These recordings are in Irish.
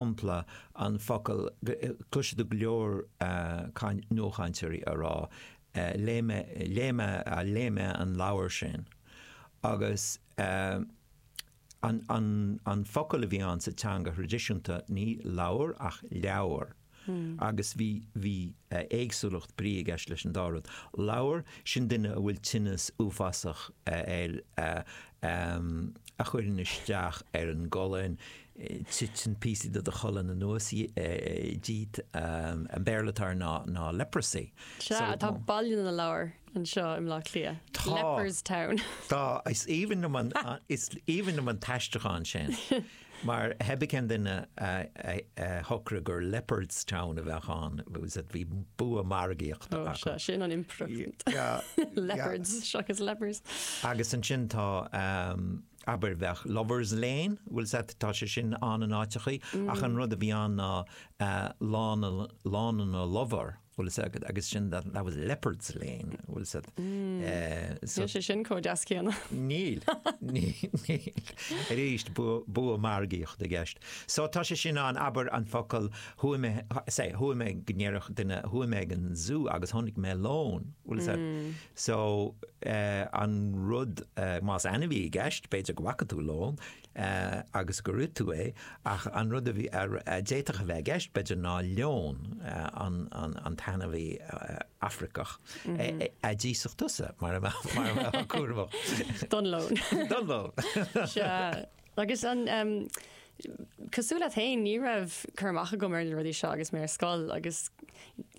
shampla an focal cloisfidh tú go leor nuachainteoirí á rá léigh mé léigh mé léigh mé an leabhar sin agus an an an focal a bhí ann sa teanga thraidisiúnta ní lobhar ach leabhar agus bhí bhí éagsúlacht brí i gceist leis an dá rud lobhar sin duine a bhfuil tinneas uafásach air a chuireann isteach ar an gcolainn titeann píosaí de do cholainn anuas díot, an Béarla atá air ná leprosy. Sea, tá Baile na Lobhar anseo i mBleá Cliath. Tá. Leopardstown. Tá, is aoibhinn liom an, is aoibhinn liom an t-aistriúchán sin. Mar pé ar bith cén duine a shocraigh gur Leopard's Town a bheadh ann, agus bhí bua margaíochta acu. Ó, sea, sin an improvement. Leopards, seachas lepers. Agus ansin tá, Abair bheadh Lovers Lane, bhuel sea tá sé sin ann in áiteacha ach an rud a bhí ann ná Lána na Lobhar, bhuel sea agus sin that was Lepers' Lane, bhuel sea so. Níl sé sin chomh deas céanna. Níl, níl. Arís bua margaíochta i gceist. So tá sé sin ann abair an focal chuaigh mé, say chuaigh mé go ndéarfadh duine chuaigh mé ag an Zú agus chonaic mé lón, bhuel sea So, an rud, más ainmhí atá i gceist, b'fhéidir go bhfaca tú lón agus gur ith tú é, ach an rud a d'fhéadfadh a bheith i gceist, b'fhéidir, ná leon, an t-ainmhí Afraiceach a d'íosfadh tusa, mura mbeadh tú cúramach. Don lón. Don lón. Sea. Agus an cosúil leat féin, ní raibh cur amach agam mar le rudaí seo agus mé ar scoil agus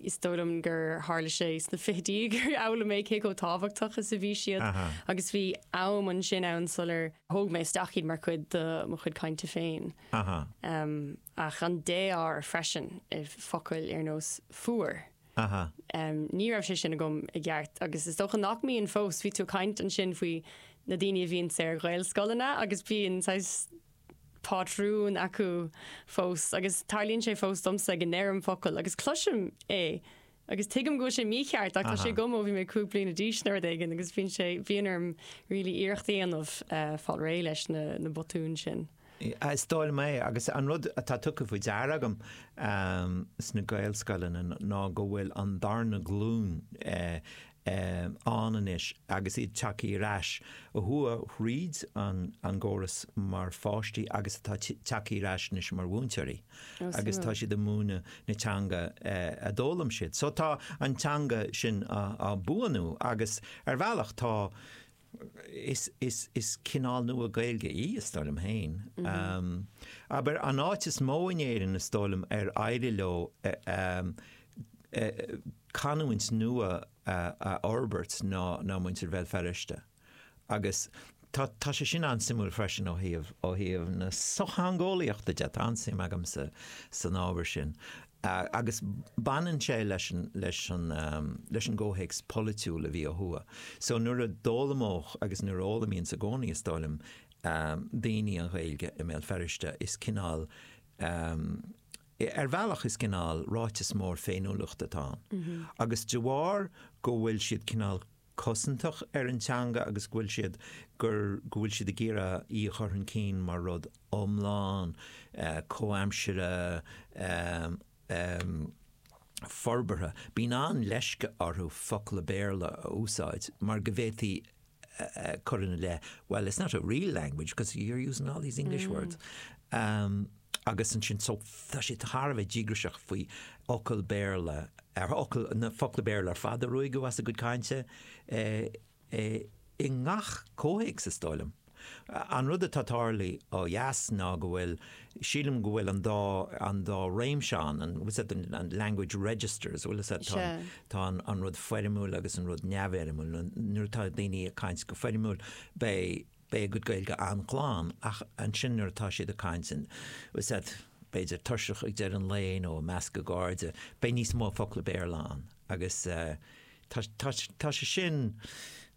is dóigh liom gur tharla sé sna fichidí gur fhoghlaim mé cé chomh tábhachtach is a bhí siad agus bhí am ansin ann sular thóg mé isteach iad mar chuid de mo chuid cainte féin. Ach an défhoghar freisin i focail ar nós fuar. Aha. Ní raibh sé sin agam i gceart agus is dócha nach mbíonn fós. Bhí tú ag caint ansin faoi na daoine a bhíonns ar Ghaelscoileanna agus bíonn saghas pátrún acu fós agus tarlaíonn sé fós domsa go ndeirim focal agus cloisim é agus tuigim go bhfuil sé mícheart ach tá sé agam ó bhí mé cúig bliana d'aois nó rud éigin agus bhíonn sé bhíonn orm really iarracht a dhéanamh fáil réidh leis na botúin sin. Is dóigh liom é agus an rud atá tugtha faoi deara agam sna Gaelscoileanna ná go bhfuil an darna glúin ann anois agus iad tagtha ar ais a chuaigh thríd an gcóras mar pháistí agus atá tagtha ar ais anois mar mhúinteoirí agus tá siad ag múineadh na teanga a d'fhoghlaim siad. So tá an teanga sin á buanú agus ar bhealach tá Is cineál nua Gaeilge í, is dóigh liom féin. Abair, an áit is mó in Éirinn, is dóigh liom, ar éirigh leo canúint nua a fhorbairt ná muintir Bhéal Feirste. Agus tá sé sin an-suimiúil freisin ó thaobh na sochtheangeolaíochta de, tá an-suim agamsa san ábhar sin. agus baineann sé leis an gcomhthéacs polaitiúil a bhí ó thuaidh so nuair a d'fhoghlaimeodh agus nuair a fhoghlaimíonns i gcónaí is dóigh liom daoine an Ghaeilge i mBéal Feirste is cineál ar bhealach is cineál ráiteas mór féiniúlachta atá ann agus de bharr go bhfuil siad cineál cosantach ar an teanga agus go bhfuil siad gur go bhfuil siad ag iarraidh í a chur chun cinn mar rud iomlán, comhaimsire, forbartha. Bíonn an-leisce orthu focla Béarla a úsáid mar go bhféadfaí cur ina leith, well, it's not a real language because you're using all these English words. agus ansin tá sé thar a bheith díograiseach faoi fhocail Béarla, focla Béarla ar fad a ruaigeadh as a gcuid cainte i ngach comhthéacs, is dóigh liom. An rud atá tarlaithe ó dheas ná go bhfuil, sílim go bhfuil an dá, an dá réimse ann, an, what's that, the language registers, bhfuil a fhios agat, tá an rud foirmiúil agus an rud neamhfhoirmiúil, nuair atá daoine ag caint go foirmiúil beidh beidh a gcuid Gaeilge an-glan ach ansin nuair atá siad ag caint bhfuil a fhios agat b'fhéidir tuirseach ag deireadh an lae nó i measc a gcairde beidh níos mó focla Béarla ann agus tá sé sin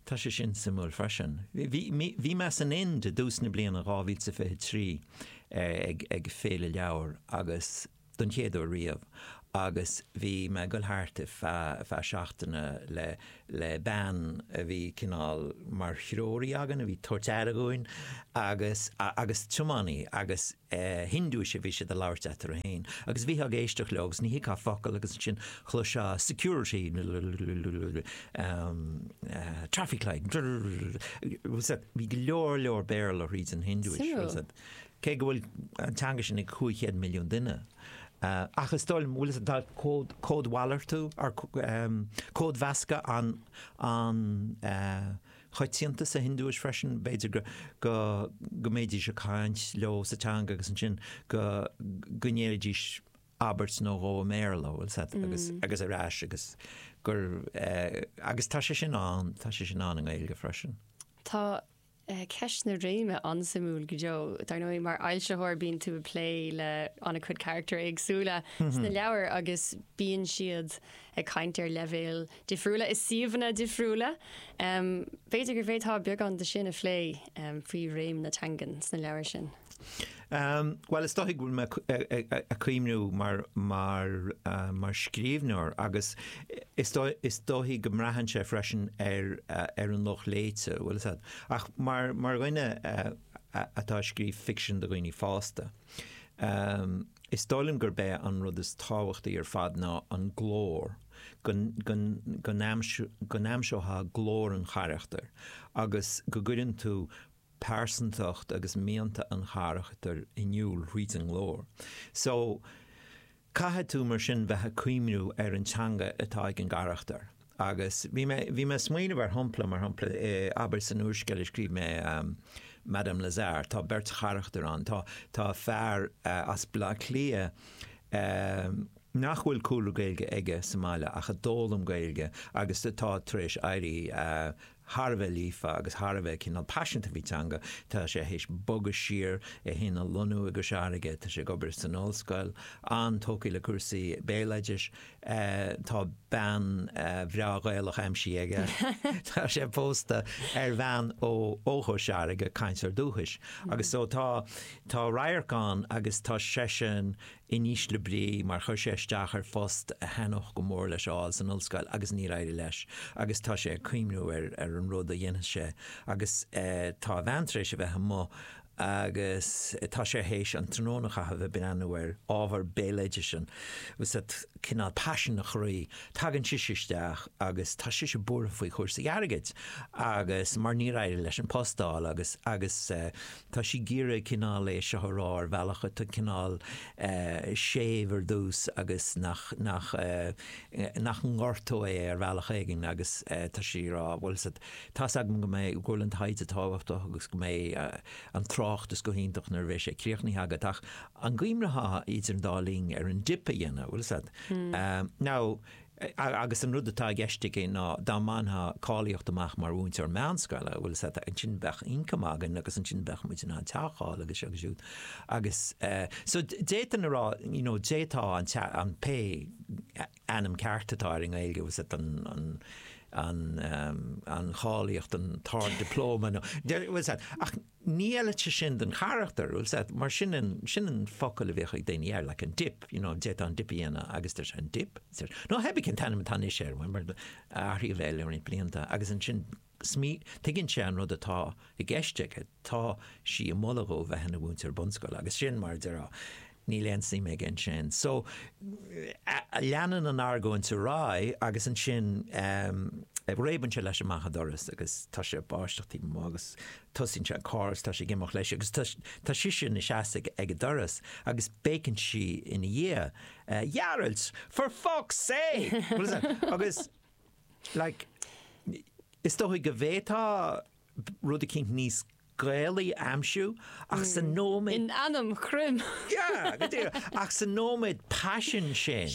tá sé sin suimiúil freisin. Bhí mé san Ind i dtús na bliana 2023 ag ag féile leabhar agus don chéad uair riamh agus bhí mé ag dul thart feadh seachtaine le bean a bhí cineál mar threoraí againn, a bhí ag tabhairt aire dhúinn agus tiománaí agus Hiondúis a bhí siad ag labhairt eatarthu féin agus bhítheá ag éisteacht leo agus ní thuigfeá focal agus ansin chloisfeá security traffic light bhí go leor leor Béarla thríd an Hiondúis. cé go bhfuil an teanga sin ag 500 milliún duine. Ach is dóigh liom, bhfuil a fhios agat, tá códmhalartú or códmheascadh an-choitianta sa Hiondúis freisin, b'fhéidir go mbeidís ag caint leo sa teanga agus ansin go ndéarfaidís abairt nó dhó i mBéarla, bhfuil a fhios agat, agus ar ais agus gur, agus tá sé sin ann, tá sé sin ann i nGaeilge freisin. Tá Ceist na réime an-suimiúil go deo. Dar ndóigh mar fhoilsitheoir bíonn tú ag plé le an-chuid carachtar éagsúla sna leabhair agus bíonn siad ag caint ar leibhéil difriúla i suíomhanna difriúla. B'fhéidir go bhféadfá beagán de sin a phlé faoi réim na teangan sna leabhair sin. Bhuel, is dóichí go bhfuil mé ag cuimhniú mar scríbhneoir agus is dóichí go mbraitheann sé freisin ar an lucht léite, bhfuil a fhios agat, ach mar dhuine atá ag scríobh ficsean do dhaoine fásta, is dóigh liom gurb é an rud is tábhachtaí ar fad ná an glór, go n-aimseofá glór an charachtair agus go gcuireann tú pearsantacht agus mianta an charachtair in iúl thríd an nglór. So, caithfidh tú mar sin bheith ag cuimhniú ar an teanga atá ag an gcarachtar. Agus bhí mé, bhí mé ag smaoineamh ar shompla, mar shompla, abair san úrscéal a scríobh mé, Madame Lazare, tá beirt charachtar ann, tá, tá fear as Bleá Cliath nach bhfuil cúlra Gaeilge aige sa mbaile ach a d'fhoghlaim Gaeilge agus atá tar éis éirí thar a bheith líofa agus thar a bheith cineál paiseanta faoin teanga. Tá sé théis bogadh siar, é fhéin a lonnú i gCois Fharraige, tá sé ag obair san ollscoil, an-tógtha le cúrsaí béaloidis, tá bean bhreá Ghaelach aimsithe aige, tá sé pósta ar bhean ó Chois Fharraige, cainteoir dúchais, agus so tá, tá radharc ann agus tá seisean in ísle brí mar chuir sé isteach ar phost a thaitneodh go mór leis a fháil san ollscoil agus níor éirigh leis agus tá sé ag cuimhniú ar an rud a dhéanfas sé agus tá a bhean tar éis a bheith amuigh agus tá sé théis an tráthnóna a chaitheamh ag breathnú ar ábhar béaloidis sin, bhfuil a fhios agat, cineál paisean a chroí tagann sise isteach agus tá sise buartha faoi chúrsaí airgid agus mar níor éirigh leis an post a fháil agus agus Tá sí ag iarraidh cineál é seo a rá ar bhealach atá cineál séimh ar dtús agus nach ngortódh é ar bhealach éigin agus tá sí ag rá bhfuil a fhios agat, tá a fhios agam go mbeidh, go bhfuil an taighde tábhachtach agus go mbeidh an tráchtas go hiontach nuair a bheidh sé críochnaithe agat ach an gcuimhneofá idir an dá linn ar an dip a dhéanamh, bhfuil a fhios agat. Now, agus an rud atá i gceist aici ná dá mbainfeá cáilíocht amach mar mhúinteoir meánscoile, bhfuil a fhios agat, ansin bheadh ioncam againn agus ansin bheadh muid in ann teach a fháil agus seo agus siúd. Agus so d'fhéadfainn a rá, you know, d'fhéadfá an tea, an, pé ainm ceart atá air i nGaeilge, bhfuil a fhios agat, an, an, an, an, an cháilíocht, an t-ard-dioplóma nó, bhfuil a fhios agat, ach, Ní fheileadh sé sin don charachtar, is ea, mar sin an, sin an focal a bhíodh ag daoine air, like an dip, you know, d'fhéadfá an dip a dhéanamh agus deir sé an dip, nó pé ar bith cén t-ainm atá anois air, mar athraíodh é le roinnt blianta agus ansin smí, tuigeann sé an rud atá i gceist aige, tá sí ag moladh dhó bheith ina mhúinteoir bunscoile agus sin mar a déarfá, Níl aon suim aige ansin. So, leanann an argóint ar aghaidh agus ansin réabann sé leis amach an doras agus tá sé ag báisteach taobh amuigh agus tosaíonn sé an carr agus tá sé ag imeacht leis agus tá sise ina seasamh ag an doras agus béiceann sí ina dhiaidh, A Ghearailt! For fuck's sake! Agus, like, is dóigh go bhféadfá rud eicínt níos Gaelaí a aimsiú ach sa nóiméad. In ainm Chroim! Sea, go díreach. Ach sa nóiméad paisiúin sin,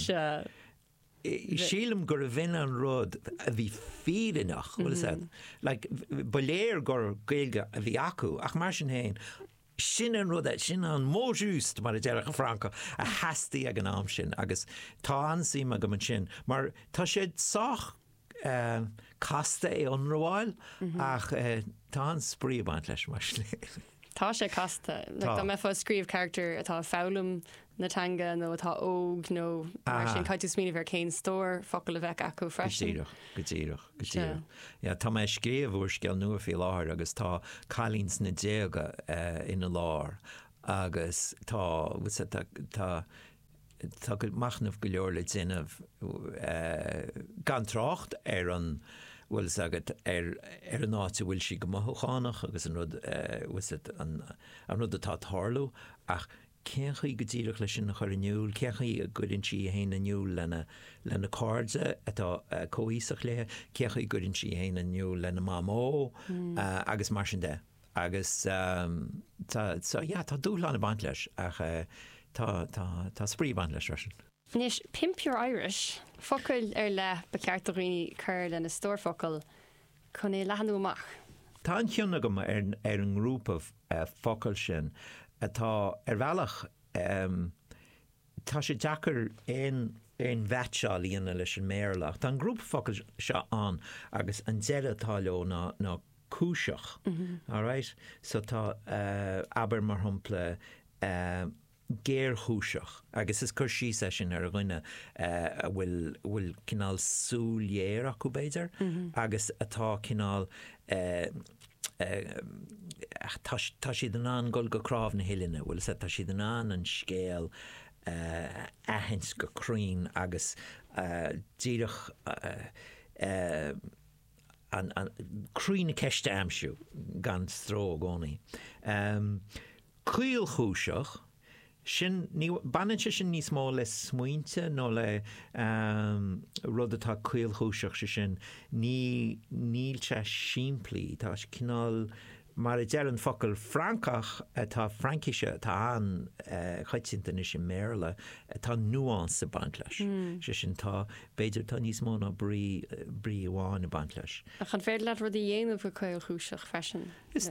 sílim gurbh shin an rud a bhí fírinneach, bhuel, is ea, like, ba léir gur Gaeilge a bhí acu ach mar sin féin, sin an rud, sin an mot juste, mar a déarfadh an Francach, a theastaigh ag an am sin agus tá an-suim agam ansin mar tá sé sách casta é ionramháil ach tá an-spraoi ag baint leis mar sin. Tá sé casta. Like dá mbeifeá ag scríobh carachtar atá ag foghlaim na teanga nó atá óg nó mar sin, caithfidh tú smaoineamh ar cén stór focal a bheadh acu freisin. Go díreach, go díreach, go díreach. Yeah, tá mé ag scríobh úrscéal nua faoi láthair agus tá cailín sna déaga ina lár agus tá, tá, tá, Tá machnamh go leor le déanamh gan trácht ar an bhfuil fhios agat ar an áit a bhfuil sí go mothúchánach agus an rud an rud atá ag tarlú ach cén chaoi go díreach leis sin a chur in iúl? Cén chaoi a gcuireann sí í fhéin in iúl lena cairde atá comhaoiseach léi? Cén chaoi a gcuireann sí í fhéin in iúl lena mamó agus mar sin de? Agus tá, so yeah, tá dúshlán ag baint leis ach tá, tá, tá spraoi ag baint leis freisin. Anois, pimp your Irish! Focail ar leith ba cheart do dhaoine a chur lena stór focal chun é leathnú amach. Tá an-chion agam ar ar an ngrúpa focal sin atá ar bhealach, Tá sé deacair aon aon mheatseáil a dhéanamh leis an mBéarla ach tá an grúpa focal seo ann agus an deireadh atá leo ná ná cúiseach, alright? So tá eh abair mar shampla eh géarchúiseach agus is cur síos é sin ar dhuine eh a bhfuil a bhfuil cineál súil ghéar acu b'fhéidir agus atá cineál eh ach tá siad in ann dul go cnámh na huillinne, bhuel is ea, tá siad in ann an scéal a aithint go cruinn agus díreach croí na ceiste a aimsiú gan stró i gcónaí. Caolchúiseach? sin, ní, baineann sé sin níos mó le smaointe nó le rud atá caolchúiseach, sé sin, ní, níl sé simplí, tá sé cineál, mar a deir an focal Francach atá, Fraincise atá an-choitianta anois i mBéarla, tá nuance ag baint leis, sé sin, tá, b'fhéidir, tá níos mó ná brí, brí amháin ag baint leis. Ach an féidir leat rud a dhéanamh go caolchúiseach freisin? Is.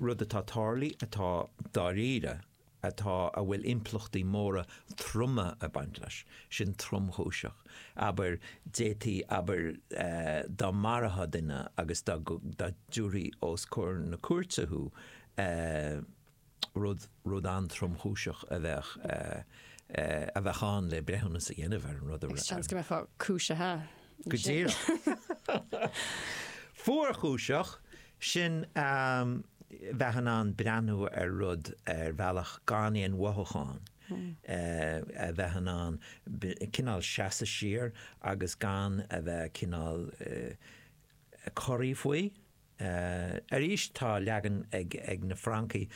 rud atá tarlaithe atá dáiríre atá a bhfuil impleachtaí móra troma ag baint leis, sin tromchúiseach, abair, d'fhéadfaí, abair, dá marófá duine agus dá dtiúrfaí os comhair na cúirte thú, rud, rud an-tromchúiseach a bheadh, a bheadh ann le breithiúnas a dhéanamh ar an rud a. Seans go mbeifeá cúisithe. Go díreach. Fuarchúiseach, sin a bheith in ann breathnú ar rud ar bhealach gan aon mhothúchán, a bheith in ann cineál seasamh siar agus gan a bheith cineál corraithe faoi. Arís tá leagan ag na Francaigh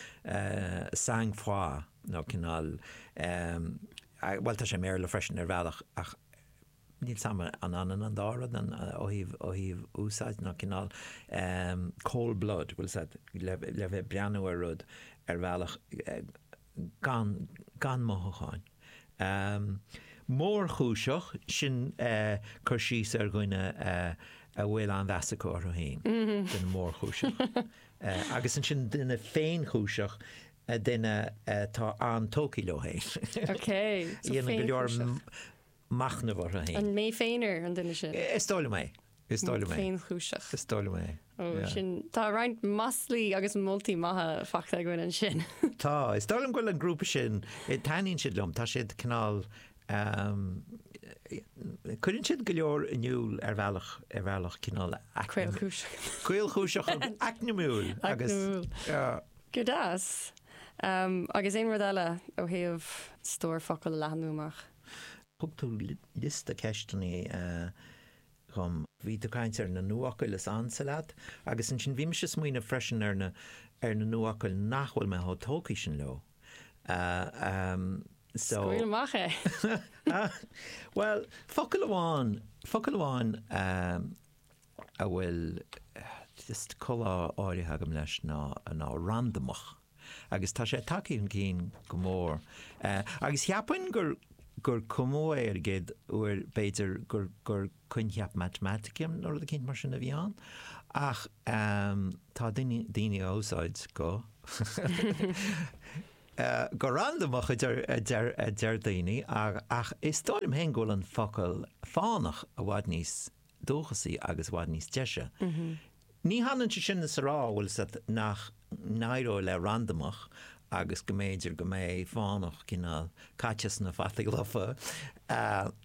sang froid nó cineál, bhuel tá sé i mBéarla freisin ar bhealach ach ní shílim gurb ionann an dá rud ó thaobh úsáide nó cineál cold blood bhuel le bheith breathnú ar rud ar bhealach, gan gan mothúcháin. mórchúiseach, sin cur síos ar dhuine a bhfuil an-mheas acu orthu féin, duine mórchúiseach. Agus ansin duine féinchúiseach, duine atá an-tógtha leo féin. Déanann go leor machnamh orthu féin. An mé féin an duine sin? Is dóigh liom é. Is dóigh liom é. Féinchúiseach. Is dóigh liom é. Ó, Yeah. sin, tá roinnt maslaí agus moltaí maithe faighte againn ansin. Tá. Is dóigh liom go bhfuil an grúpa sin, eh, taitníonn siad liom, tá siad cineál, ehm, eh, cuireann siad go leor in iúl ar bhealach, ar bhealach cineál eacnam- Caolchúiseach. caolchúiseach agus eacnamúil agus, Eacnamúil. yeah. Go deas. Ehm, agus aon rud eile ó thaobh stór focal a leathnú amach? Thug tú liosta ceisteanna dhom. Bhí tú ag caint ar na nuafhocail is ansa leat agus ansin bhí mise ag smaoineamh freisin ar na ar na nuafhocail nach bhfuil mé chomh tógtha sin leo. So. Scaoil amach é! Bhuel, focal amháin, focal amháin a bhfuil col áirithe agam leis ná randamach agus tá sé tagtha chun cinn go mór agus cheapfainn gur gur cumadh é ar an gcéad uair b'fhéidir gur gur coincheap matamaitice nó rud éicint mar sin a bhí ann ach tá daoine á úsáid go go randamach a deir a deir a deir daoine ach is dóigh liom féin go bhfuil an focal fánach i bhfad níos dúchasaí agus i bhfad níos deise. Ní hionann sé sin is a rá, bhfuil a fhios agat, nach n-éireoidh le randamach agus go mb'fhéidir go mbeidh fánach cineál caite sna fataí lofa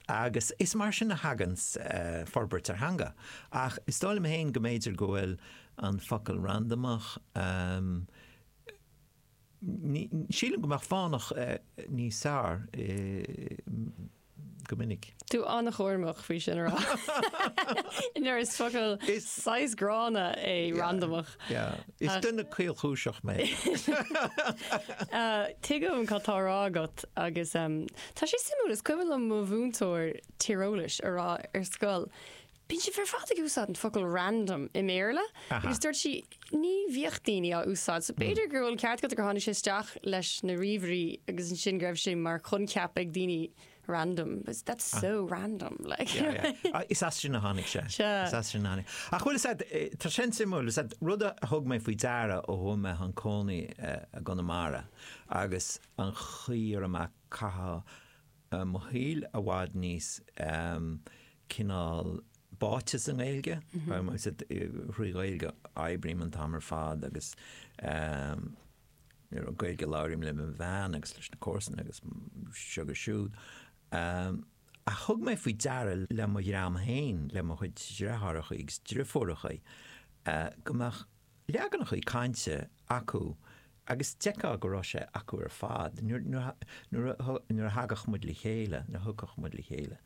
agus is mar sin a thagann forbairt ar theanga. Ach is dóigh liom féin go mb'fhéidir go bhfuil an focal randamach, Sílim go mbeadh fánach níos fearr go minic. Tá tú an-chúramach faoi sin a rá. Mar is focal saghas gránna é randamach. Is duine caolchúiseach mé. Tuigim cad tá a rá agat agus tá sé suimiúil, is cuimhin liom mo mhúinteoir tíreolais ag rá ar scoil, Bíonn siad ar fad ag úsáid an focal 'random' i mBéarla agus dúirt sí ní bhíodh daoine á úsáid so b'fhéidir go bhfuil an ceart agat gur tháinig sé isteach leis na ríomhairí agus ansin go raibh sé mar choincheap ag daoine 'random' but that's so random like. Is as sin a tháinig sé. Sure. Ach bhuel, tá sé an-suimiúil, rud a thug mé faoi deara ó chuaigh mé chun cónaí i gConamara agus an chaoi ar a mbeadh caitheamh mo shaol i bhfad níos cineál báite sa nGaeilge, thrí Ghaeilge a oibrím an t-am ar fad agus Gaeilge a labhraím le mo bhean agus leis na comharsana agus seo agus siúd. Ach thug mé faoi deara le mo dhream féin, le mo chuid dreitheárachaí agus dreifiúrachaí go mbeadh leaganachaí cainte acu agus d'fheicfeá go raibh sé acu ar fad nuair a thagadh muid le chéile, nuair a thiocfadh muid le chéile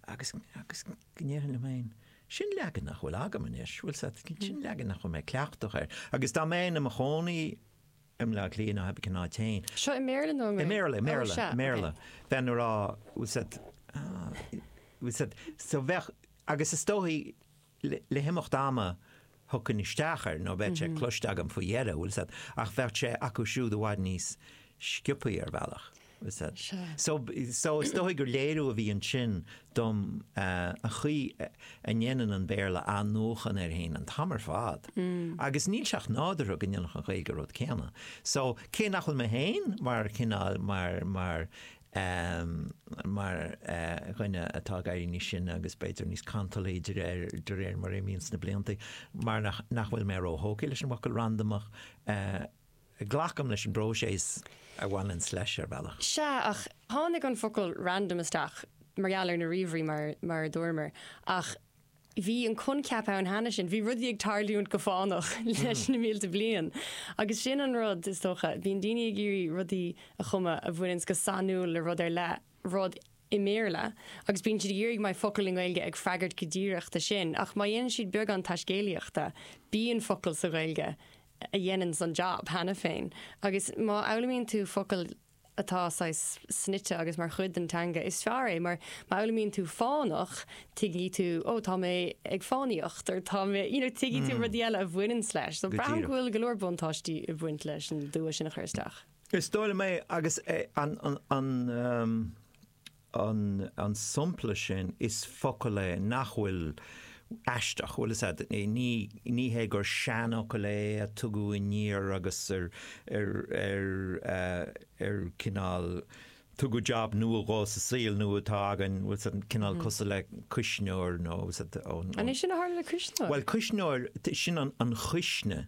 agus, agus go ndéarfainn liom fhéin, sin leagan nach bhfuil agam anois, bhfuil a fhios agat, sin leagan nach bhfuil mé cleachtach air agus dá mbeinn i mo chónaí i mBleá Cliath nó pé ar bith cén áit fhéin, seo i mBéarla, bheinn a' rá, bhfuil a fhios agat, so bheadh, agus is dóigh, le himeacht ama thiocfainn isteach air nó bheadh sé cloiste agam faoi dheireadh, bhfuil a fhios agat, ach bheadh sé acu siúd i bhfad níos sciopaí ar bhealach, bhfuil a fhios agat. So is dóigh gur léiriú a bhí ansin dom an chaoi a ndéanann an Béarla athnuachan air fhéin an t-am ar fad agus níl sé ach nádúrtha go ndéanfadh an Ghaeilge an rud céanna. So cé nach bhfuil mé féin mar chineál, mar, mar, é mar dhuine atá ag éirí níos sine agus b'fhéidir níos cantalaí de réir mar a imíonn na blianta, mar nach bhfuil mé ró-thógtha leis an bhfocal 'randamach'. Glacaim leis an bpróiseas a bhaineanns leis ar bhealach. Sea, ach tháinig an focal 'random' isteach mar gheall ar na ríomhairí mar a dúramar, ach bhí an coincheap ann cheana sin, bhí rudaí ag tarlúint go fánach leis na mílte bliain agus sin an rud, is dócha, bíonn daoine ag iarraidh rudaí a chumadh a bhaineanns go sainiúil le rud ar leith, rud i mBéarla, agus bíonn siad ag iarraidh go mbeidh focal i nGaeilge ag freagairt go díreach dó sin, ach má dhéanann siad beagán taiscéalaíochta, bíonn focal sa Ghaeilge a dhéananns an jab cheana féin agus má fhoghlaimíonn tú focal atá saghas snoite agus mar chuid den teanga, is fearr é mar má fhoghlaimíonn tú fánach, tuigfidh tú, oh, tá mé ag fánaíocht or tá mé, you know, tuigfidh tú rudaí eile a bhaineanns leis. So braithim go bhfuil go leor buntáistí ag baint leis an dua sin a chur isteach. Go díreach. Is dóigh liom é agus é an, an, an um, an sampla sin is focal é nach bhfuil aisteach, bhuel is ea, ní hé gur seanfhocal é a tugadh aniar agus ar cineál tugadh jab nua dhó sa saol nua atá againn, bhuel is ea, cineál cosúil le cuisneoir nó. An é sin a tharla le cuisneoir? Bhuel cuisneoir, sin an chuisne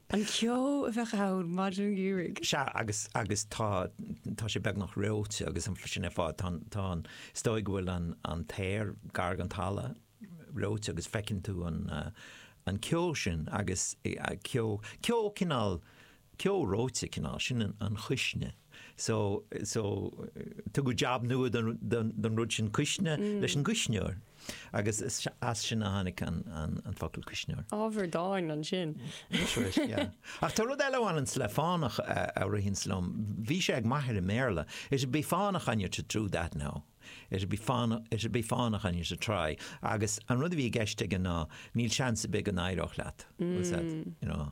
An ceo a bheadh ann maidin gheimhridh. Sea, agus, agus tá, tá sé beagnach reoite agus an, sin ar fad, tá, tá an, is dóigh go bhfuil an, an t-aer gar don talamh reoite agus feiceann tú an, an ceo sin agus ceo, ceo cineál, ceo reoite cineál, sin an chuisne. so, so, tugadh jab nua don rud sin cuisne leis an gcuisneoir agus as sin a tháinig an focal cuisneoir. Ábhar dáin ansin. That's right, yeah. Ach tá rud eile a bhaineanns le fánach a ritheanns liom, bhí sé ag m'athair i mBéarla, it'd be fánach on you to do that now, it'd be fánach, it'd be fánach on you to try, agus an rud a bhí i gceist aige ná níl seans ar bith go n-éireodh leat, what's that, you know.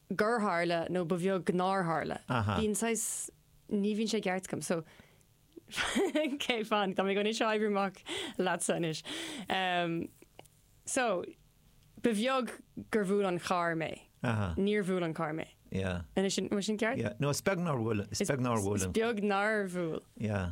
gur tharla nó ba bheag nár tharla. Bíonn saghas, ní bhíonn sé i gceart agam so ok fan tá mé anois ag oibriú amach leatsa anois. So ba bheag gur bhuail an carr mé, níor bhuail an carr mé. An é sin, an bhfuil sin ceart? Yeah, no is beag nár bhuail, is beag nár bhuail. Is beag nár bhuail. Yeah.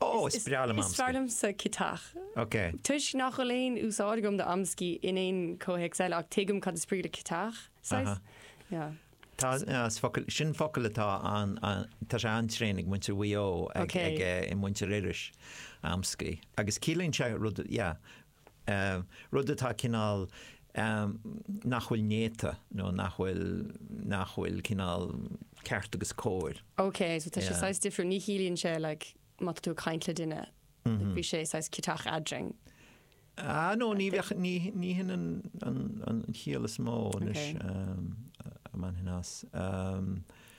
Ó, is breá liom amscaí. Is fearr liomsa citeach. Ok. Toisc nach bhfuil aon úsáid agam d'amscaí in aon chomhthéacs eile, ach tuigim cad is brí le citeach, saghas. Yeah. Tá, is focal, sin focal atá an, an, tá sé an-tréan ag muintir Mhaigh Eo, ag, ag, i muintir Iorrais, amscaí. Agus ciallaíonn sé rud, yeah, rud atá cineál nach bhfuil néata nó nach bhfuil nach bhfuil cineál ceart agus cóir. Ok so tá sé saghas difriúil, ní chiallaíonn sé like má tá tú ag caint le duine like bhí sé saghas ciotach eadrainn. Ah no ní bheadh ní ní hin an an an chiall is mó anois a mbainfinn as.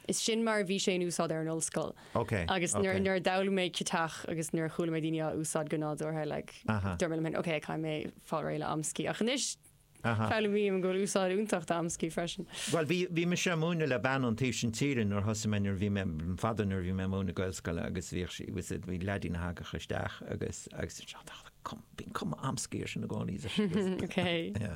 Is sin mar a bhí sé in úsáid ar an ollscoil. Ok, Agus nuair, ok. nuair a d'fhoghlaim mé ciotach agus nuair a chuala mé daoine á úsáid go nádúrtha, like, Aha. dúirt mé liom féin, ok, caithfidh mé fáil réidh le amscaí. Ach anois, Aha. foghlaimím go bhfuil úsáid iontach d'amscaí freisin. Bhuel, bhí, bhí mise ag múineadh le bean ón taobh sin tíre nuair a thosaigh mé, nuair a bhí mé, fadó nuair a bhí mé ag múineadh Gaelscoile agus bhíodh sí, was it, bhí leadín a thagadh isteach agus, agus, bíonn cuma amscaí air sin i gcónaí. Ok. Yeah.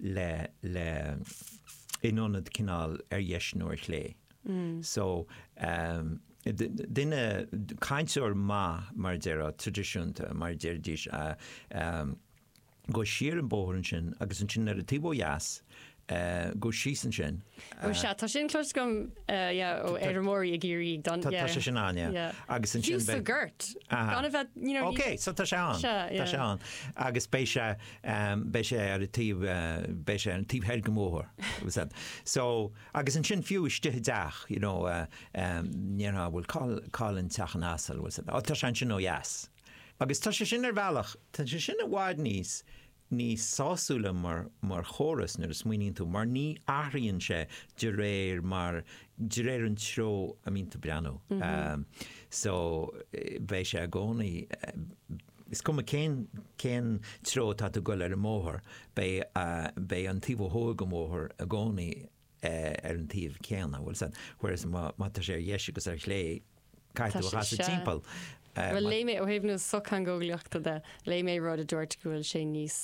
le le in ionad cineál ar dheis nó ar chlé. So duine, cainteoir maith mar a déarfá, traidisiúnta mar a déarfaidís, gabh siar an bóthar ansin agus ansin ar an taobh ó dheas gabh síos ansin. Ó sea, tá sin cloiste agam, yeah, ó fheirmeoirí i gCiarraí ag dul, yeah. Tá sé sin ann, yeah. Yeah. Agus ansin beidh. Fiú sa gort. Aha. Gan a bheith, you know, you. Okay, so tá sé ann. Sea, yeah. Tá sé ann. Agus beidh sé. beidh sé ar an taobh, beidh sé ar an taobh thoir den bhóthar agus an, so, agus ansin fiú istigh i dteach you know dá ndéarfá bhuel cá, cá bhfuil an teach an asail bhfuil fhios agat á tá sé ansin ó dheas. Agus tá sé sin ar bhealach, tá sé sin i bhfad níos, níos sásúla mar, mar chóras nuair a smaoiníonn tú mar ní athraíonn sé de réir mar, de réir an treo a mbíonn tú ag breathnú. So beidh sé i gcónaí, Is cuma cén cén treo atá tú ag goil ar an mbóthar, beidh beidh an taobh ó thuaidh den bhóthar i gcónaí ar an taobh céanna, bhfuil fhios agat, whereas má má tá sé ar dheis agus ar chlé, caithfidh tú a chasadh timpeall. Bhuel léigh mé ó thaobh na sochtheangeolaíochta de, léigh mé rud a dúirt go bhfuil sé níos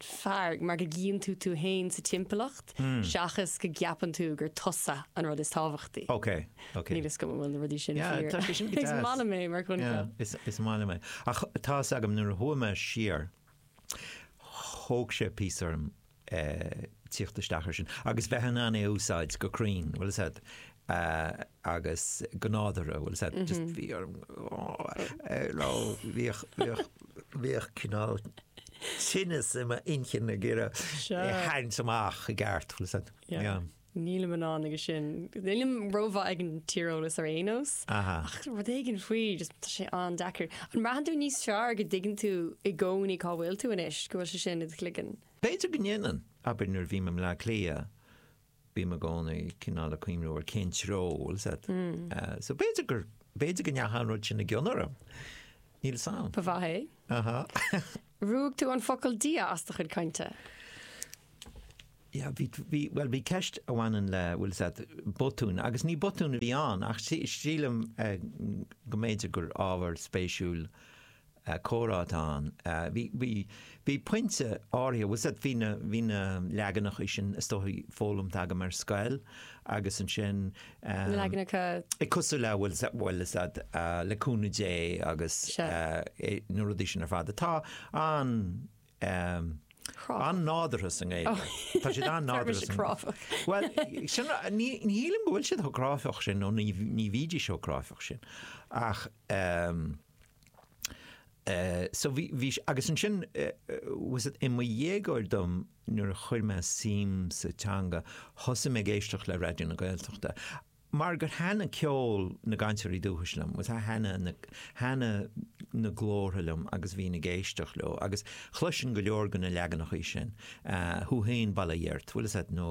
fearr mar go gcíonn tú tú fhéin sa timpeallacht seachas go gceapann tú gur tusa an rud is tábhachtaí. Okay. Níl fhios agam an bhfuil na rudaí sin fíor. Is maith liom é mar choincheap. Is maith liom é. Ach tá fhios agam nuair a chuaigh mé siar thóg sé píosa orm tíocht isteach air sin agus bheith in ann é a úsáid go cruinn, bhfuil fhios agat, agus go nádúrtha, bhfuil fhios agat, just bhí orm nó bhíodh cineál tinneas i m'inchinn ag iarraidh é a tharraingt amach i gceart, bhfuil fhios agat. Nílim in ann aige sin. Nílim rómhaith ag an tíreolas ar aon nós. Ach rud éigin faoi, just tá sé an-deacair. An mbraitheann tú níos fearr go dtuigeann tú i gcónaí cá bhfuil tú anois, go bhfuil sé sin i do chloigeann? B'fhéidir go ndéanann. Abair nuair a bhím i mBleá Cliath, bím i gcónaí cineál ag cuimhniú ar cén treo, bhfuil fhios agat. So b'fhéidir gur, b'fhéidir go ndeachaigh an rud sin i gcion orm. Níl fhios agam. Ba mhaith é. Ruaig tú an focal Dia as do chuid cainte. Yeah, bhí, bhí, bhuel, bhí ceist a bhaineann le, bhfuil fhios agat, botún, agus ní botún a bhí ann, ach sí, sílim eh, go mb'fhéidir gur ábhar spéisiúil eh, comhrá atá ann. Eh, bhí, bhí, bhí pointe áirithe, bhfuil fhios agat, bhí na, bhí na leaganachaí sin, is dóichí, foghlamtha agam ar scoil, agus ansin Na leaganacha. Is cosúil le bhfuil, bhfuil fhios agat, le cúnamh Dé agus na rudaí sin ar fad. Tá an, Chráifeach. an-nádúrtha sa nGaeilge. Oh. Tá siad an-nádúrtha sa. Tá siad cráifeach. Bhuel, sin, ní, ní shílim go bhfuil siad chomh cráifeach sin nó ní, ní bhídís chomh cráifeach sin ach so bhí, bhí, agus ansin bhfuil fhios agat, i mo dhéagóir dom, nuair a chuir mé suim sa teanga, thosaigh mé ag éisteacht le Raidió na Gaeltachta, mar gur thaitin ceol na gcainteoirí dúchais liom, bhuel, thaitin na, thaitin na glórtha liom agus bhínn ag éisteacht leo, agus chloisinn go leor de na leaganachaí sin, thú fhéin bail ó Dhia ort, bhfuil fhios agat, nó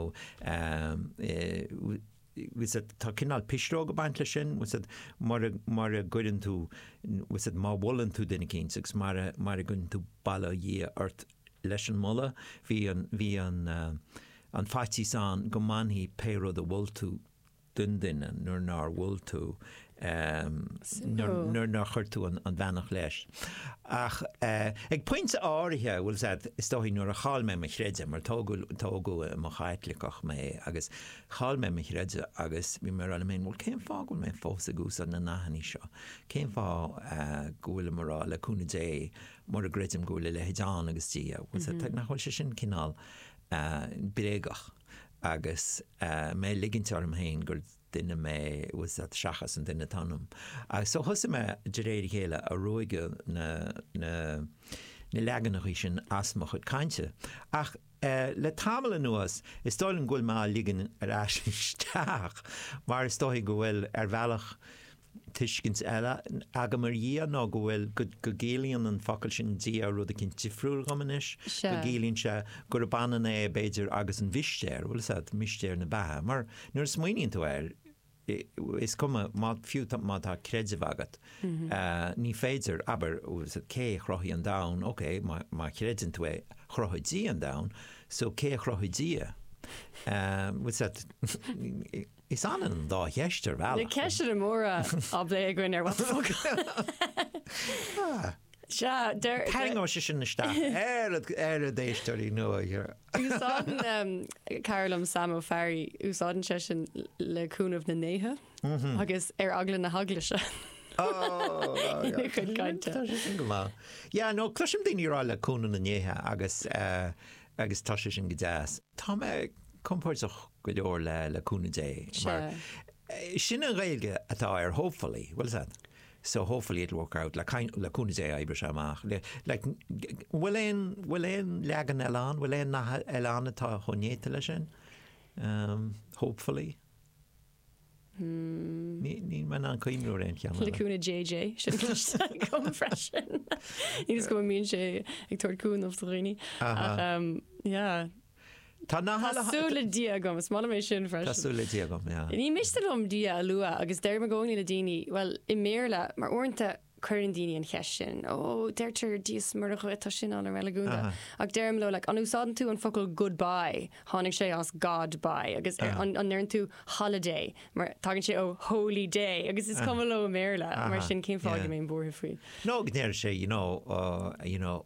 fhios agat, tá cineál pisreog ag baint leis sin, fhios agat, mara, mara gcuireann tú, fhios agat, má mholann tú duine eicínt agus mara, mara gcuireann tú bail ó Dhia ort, leis an moladh. Bhí an, bhí an, an faitíos ann go mbainfí pé rud a mhol tú den duine nuair nár mhol tú, Suimiúil. nuair nár chuir tú an bheannacht leis. Ach ag pointe áirithe, bhfuil fhios agat, is dóichí nuair a chaill mé mo chreideamh, mar tógadh, tógadh i mo Chaitliceach mé, agus chaill mé mo chreideamh agus bhí mé a' rá liom fhéin, bhuel cén fáth go bhfuil mé fós ag úsáid na nathannaí seo? Cén fáth go bhfuilim a' rá le cúnamh Dé mura gcreidim go bhfuil a leithéid ann agus Dia agus nach bhfuil sé sin cineál bréagach agus mé ag ligint orm féin gur duine mé, bhfuil fhios agat, seachas an duine atá ionam. Agus so thosaigh mé de réir a chéile ag ruaigeadh na leaganachaí sin as mo chuid cainte. Ach le tamall anuas is dóigh liom go bhfuil mé á ligean ar ais isteach mar is dóichí go bhfuil ar bhealach tuiscint eile agam ar Dhia nó go bhfuil, go gciallaíonn an focal sin Dia rud eicínt difriúil dhom anois, go gciallaíonn sé gurb ionann é b'fhéidir agus an mhistéir, bhfuil fhios agat, mistéir na beatha, mar nuair a smaoiníonn tú air, is cuma, má, fiú má tá creideamh agat, ní féidir, abair, bhfuil fhios agat, cé a chruthaigh an domhan, ok, má chreideann tú é, chruthaigh Dia an domhan, so cé a chruthaigh Dia? Bhfuil fhios agat, Is ionann dá cheist ar bhealach. Na ceisteanna móra á bplé againn ar What the Focus. Sea, deir. Tarraingeoidh sé sin isteach ar ar a d'éisteoirí nua. Úsáideann cara liom Sam Ó Fearraigh, úsáideann sé sin le cúnamh na ndéithe agus ar eagla na heaglaise ina chuid cainte. Tá sé sin go maith. Yeah, no, cloisim daoine ag rá le cúnamh na ndéithe agus eh, agus tá sé sin go deas. Tá mé compordach go leor le le cúnamh Dé mar sin an Ghaeilge atá ar hopefully bhuel is ea so hopefully it'll work out le cúnamh Dé oibreoidh sé amach le like bhfuil aon bhfuil aon leagan eile ann bhfuil aon nath eile ann atá chomh néata leis sin hopefully? Níl mé in ann cuimhniú ar aon cheann eile. Cluic na JJ, sin an cliste agam freisin. Is cuma mbíonn sé ag tabhairt cúnamh do dhaoine. Ach yeah. Tá na halla. Tá súil le Dia agam, is maith liom é sin freisin. Tá súil le Dia agam, yeah. Ní miste liom Dia a lua agus deirim i gcónaí le daoine, bhuel, i mBéarla, mar uaireanta Cuireann daoine an cheist sin, ó deirtear Dia is Muire dhuit, tá sin an-reiligiúnda. Ach deirim leo, like, an úsáideann tú an focal goodbye? Tháinig sé as God bye. Agus an ndeireann tú holiday? Mar tagann sé ó holy day. Agus is cuma leo i mBéarla. Mar sin, cén fáth go mbeifeá buartha faoi? Nó go ndeir sé, you know, you know.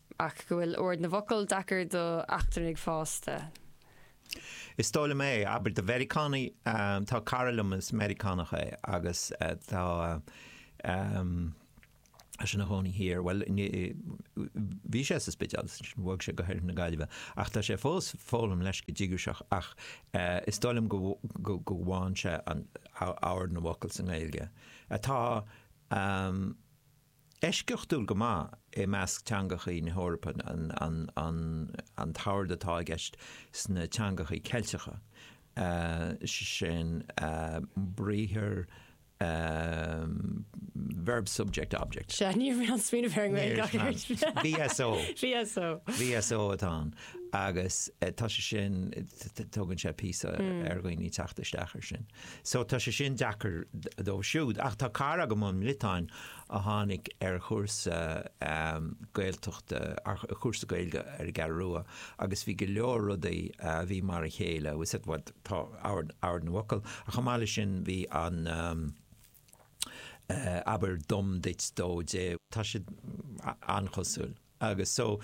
ach go bhfuil ord na bhfocal deacair do eachtrannaigh fásta is dóigh liom é, abair do Mheiriceánaigh. Tá cara liom is Meiriceánach é agus tá sé ina chónaí thiar, bhuel, bhí sé sa Spidéal agus ansin bhog sé go hOirthear na Gaillimhe, ach tá sé fós ag foghlaim leis go díograiseach ach is dóigh liom go bhfaigheann sé ord na bhfocal sa nGaeilge atá. Eisceachtúil go maith i measc teangachaí na hEorpa an t-ord atá i gceist sna teangachaí Ceilteacha, sin briathar, verb subject object. Sea, ní raibh aon smaoineamh ar an nGaeilge ach ar an VSO. VSO. VSO atá ann agus tá sé sin, tugann sé píosa ar dhaoine teacht isteach ar sin. So tá sé sin deacair dóibh siúd. Ach tá cara agam ón mBriotáin a tháinig ar chúrsa Gaeltachta, ar chúrsa Gaeilge ar an gCeathrú Rua agus bhí go leor rudaí a bhí mar a chéile, is ea, tá ord na bhfocal ach chomh maith leis sin bhí an eh abair dom duit dó dé, tá siad an-chosúil. Agus so,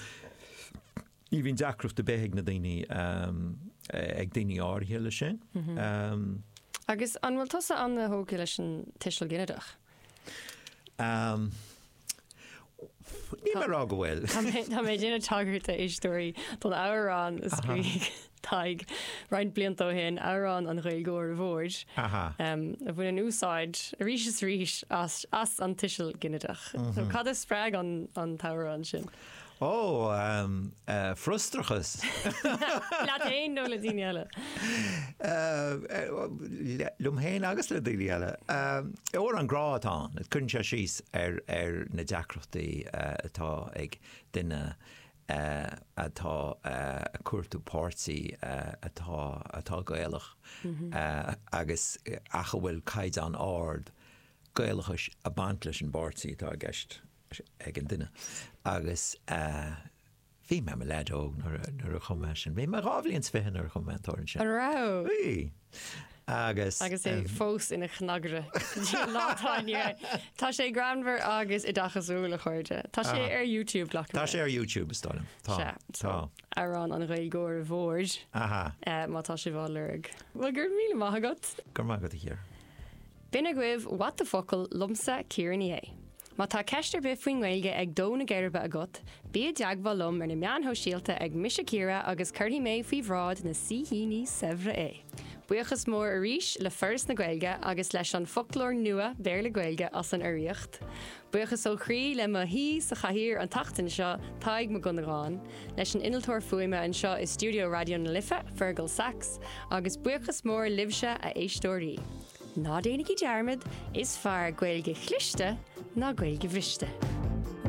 ní bhíonn deacracht ar bith ag na daoine, ag daoine áirithe leis sin. Agus an bhfuil tusa an-tógtha leis an tuiseal ginideach? Níl mé ag rá go bhfuil. Tá mé ag déanamh tagairt a éisteoirí don amhrán a scríobh. Tadhg, roinnt blianta ó shin, amhrán an Ghaeilgeora Mhóir, a bhaineann úsáid arís is arís as an tuiseal ginideach. Cad a spreag an t-amhrán sin? Ó, frustrachas. Leat fhéin nó le daoine eile? Liom fhéin agus le daoine eile. Amhrán grá atá ann, cuireann sé síos ar na deacrachtaí atá ag duine atá ag cuartú páirtí atá atá Gaelach agus ach a bhfuil caighdeán ard Gaelachais ag baint leis an bpáirtí atá i gceist ag an duine agus bhí mé mo leaid óg nuair a nuair a chum mé sin. Bhí mé dhá bhliain 's fiche nuair a chum mé an t-amhrán sin. An raibh? Bhí. Agus. Agus é fós ina chnagaire go dtí an lá atá inniu ann. Tá sé greannmhar agus oideachasúil, a chairde. Tá sé ar YouTube, ghlac mé. Tá sé ar YouTube, is dóigh liom. Tá. Sea, so, Tá. amhrán an Ghaeilgeora Mhóir, Aha. eh, má tá sibh á lorg. Bhuel, go raibh míle maith agat. Go raibh maith agat, a Chiara. B'in agaibh What the Focal liomsa Ciara Ní É. Má tá ceist ar bith faoin nGaeilge ag dó na geirbe agat, bí i dteagmháil liom ar na meáin shóisialta ag Mise Ciara agus cuirfidh mé faoi bhráid na saoithíní saibhre é! Buíochas mór arís le Foras na Gaeilge agus leis an Foclóir Nua Béarla-Gaeilge as an urraíocht. Buíochas ó chroí le mo shaoi sa chathaoir an tseachtain seo, Tadhg Mac Dhonnagáin, leis an innealtóir fuaime anseo i stiúideo Raidió na Life, Fearghal Saxe, agus buíochas mór libhse, a éisteoirí! Ná déanaigí dearmad, is fearr Gaeilge chliste ná Gaeilge bhriste.